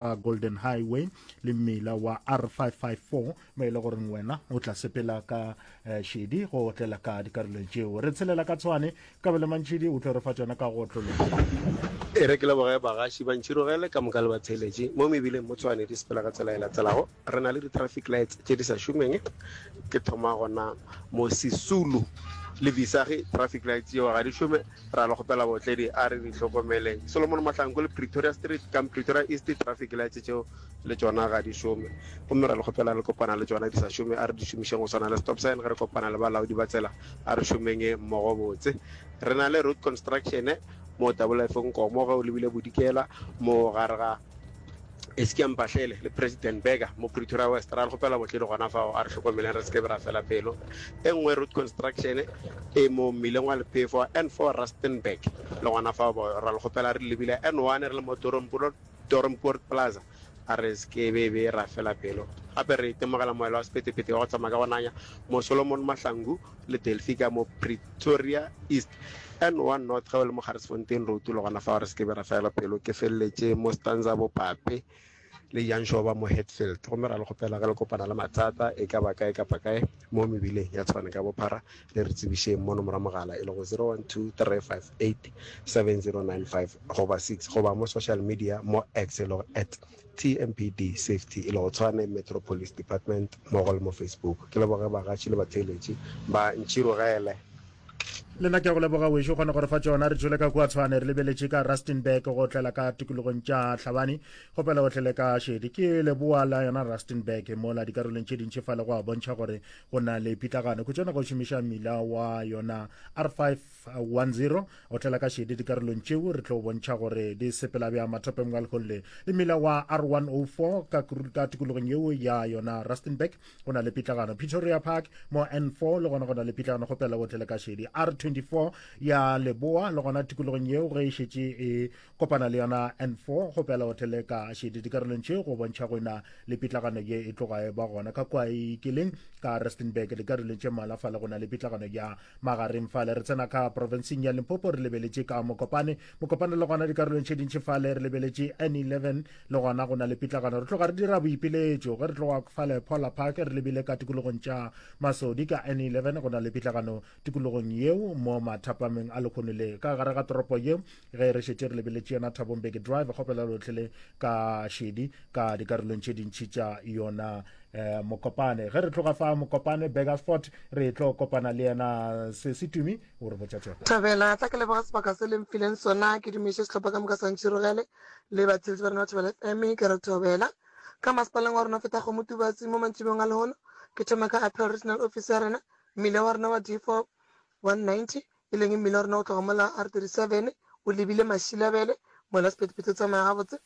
a golden highway le mmila wa r554 mo e le goreng wena o tla sepela ka eh, šedi go otlela ka dikarolong tšeo re tshelela ka tshwane ka bele mantšhidi o tlo re fa tsona ka go otlologa e re ke leboge bagaši ba ntšhirogele ka moka le batheeletše mo mebileng mo tshwane di sepela ka tsela e latelago Re na le di traffic lights tše di sa šomeng, ke thoma gona mo Sisulu le Visagie traffic lights tšeo ga di šome, ra le kgopela baotledi a re di hlokomeleng. Solomon Mahlangu le Pretoria Street kam Pretoria East traffic lights tšeo le tšona ga di šome, gomme ra le kgopela le kopana le tšona di sa šome a re di šomišeng go swana le stop sign ge re kopana le balaodi ba tsela a re šomeng mmogo botse. Re na le road construction mo Tabolefo Nkomo ge o lebile Bodikela mo gare ga. Eskia Mpahlele le President Burger mo Pretoria West ra le gopela botle di gona fao a re hlokomeleng re seke ra fela pelo. E nngwe road construction e mo mmileng wa lephefo wa N4 Rustenburg le gona fao bo ra le gopela re lebile N1 re le mo Doornpoort Plaza a re seke be be ra fela pelo. Gape re itemogela moela wa sepetepete wa go tsamaya ka go nanya mo Solomon Mahlangu le Delphika mo Pretoria East, N1 North ge o le mo Garisfontein Road le gona fao re se ke be ra fela pelo. Ke feleletše mo Stanza Bopape le Janshoba mo Hatfield. Gomme ra le kgopela ge le kopana le mathata e ka ba kae kapa kae mo mebileng ya Tshwane ka bophara, le re tsebišeng mono morwa mogala e lego 0123587095 goba 6 goba mo social media mo X e lego at. TMPD Safety e lego Tshwane Metro Police Department mmogo le mo Facebook. Ke leboge bagatši le batheeletši ba ntširogele. Le nna ke a go leboga wešo kgone gore fa tšona re tšwele ka kua tshwane re lebeletše ka rustenburg go tlela ka tikologong tša tlhabane gopela o tlele ka šedi ke leboa la yona rustenburg mola dikarolong tše dintši fa le go a bontšha gore go na le pitlagano khutšana go šomiša mmila wa yona r5 10 otlela ka šedi dikarolong tšeo re tlo bontšha gore di sepela bja mathopeng wa leholle le mmila wa r104 ka, ka tikologong yeo ya yona rustenburg go na le pitlagano pretoria park mo n4 le gona go na le pitlagano go pela otlele ka šedi r24 ya leboa le gona tikologong yeo ge e šetše e kopana le yona n4 go pela o theleka šedi dikarolong tše go bontšha go ena le pitlagano ye e tloga e ba gona ka kwa e ikileng ka rustenburg dikarolong tše mala fale go na le pitlagano ya magareng fale re tsena ka provinseng ya limpopo re lebeletše ka mokopane mokopane le gona dikarolong tše dintši fale re lebeletše n11 le gona go na le pitlagano re tloga re dira boipiletšo ge re tloga fale pola park re lebile ka tikologong tša masodi ka n11 go na le pitlagano tikologong yeo mo mathapameng a lekgono le ka gare ga toropo yeo ge re šetše re lebeletše yona thabong beke drive kgopela lotlhe le ka šedi ka dikarolong tše dintšhi tša yona eh, mokopane ge re tloga fa mokopane begasport re tlo kopana le yena se se tumi o re botša tšona thabela tla ke leboga sebaka se leng fileng sona ke dumiše sehlopha ka moka santšhirogele le batheletši ba rena ba thabela fm ke re thobela ka masepaleng wa rona feta kgomo tubatsi mo mantšibeng a lehono ke thoma ka appeal regional office ya rena mmile wa rona wa d four one ninety e leng mmila wa rena go tloga mola R37 o lebile Mashilabele, mola Sephethephethe o tsamaya gabotse,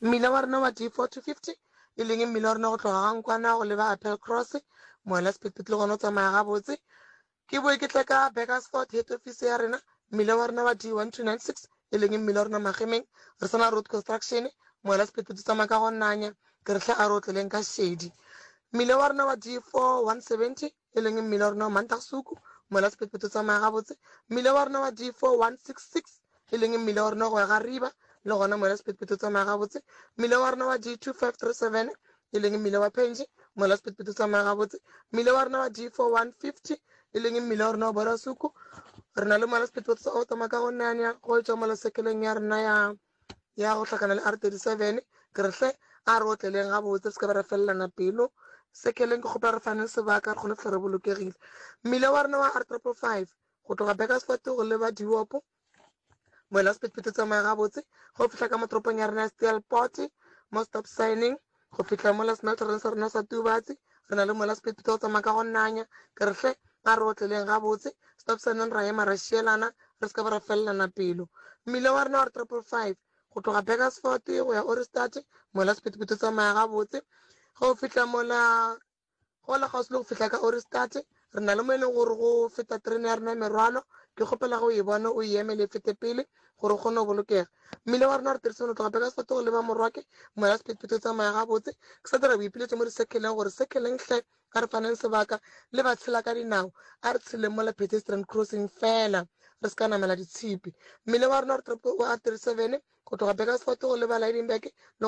mmila wa rena wa D4-50 e leng mmila wa rena go tloga ga Nkwana go leba Appelcross, mola Sephethephethe le gona o tsamaya gabotse. Ke boe ke tle ka Burgersfort, head office ya rena, mmila wa rena wa D1296 e leng mmila wa rena Magemeng, re sa na Road Construction, mola Sephethephethe o tsamaya ka go nanya, ke re hle a re otleleng ka šedi. Mmila wa rena wa D4-170 e leng mmila wa rona wa Mantaxuku, mola sephetphetho tsamaya gabotse, mmila wa rona wa D4166, e leng mmila wa rona go ya ga Riba, le gona mola sephetphetho tsamaya gabotse, mmila wa rona wa D2537, e leng mmila wa Phenji, mola sephetphetho tsamaya gabotse, mmila wa rona wa D4150, e leng mmila wa rona wa Borasuku, re na le mola sephetphetho sa Otama ka go nanya go etšwa mola sekeleng ya rona ya ya go hlakana le R37, ke re, Hle, a re otleleng gabotse, re se ke ba ra felelana pelo. Sekeleng, ke kgopela re fane sebaka, re kgone go fihla re bolokegile. Mmila wa rena wa R555, go tloga Burgersfort go leba Diopo, moela sephethephethe o tsamaya gabotse ge o fihla ka mo toropong ya rena ya Steelpoort, mo stop signing. Go fihla mola senatoreng sa rena sa Tubatse, re na le mola Sephethephethe o tsamaya ka go nanya. Ke re, Hle, a re otleleng gabotse, Stopsaneng ra ema ra šielana, re se ka ba ra felelana pelo. Mmila wa rena wa re Triple Five, go tloga Burgersfort go ya Ohrigstadt, mola Sephethephethe o tsamaya gabotse. Ge o fihla mola, go la kgauswi le go fihla ka Ohrigstad. Re na le mo e lego gore go feta terene ya rena ya merwalo. Ke kgopela ge o e bona o e emele e fete pele gore o kgone go bolokega. Mmila wa rena re dirisitse go tloga Beresford go leba Morwake. Moya wa sephethephethe o tsamaya gabotse. Ke sa dira boipiletšo mo disekheleng gore, Sekheleng hle! A re faneng sebaka le batshela ka dinao. A re tšheleng mola pedestrian crossing feela re se ka namela ditshipi. Mmila wa rena wa diteropo o R37 go tloga Beresford go leba Lydenburg le gona.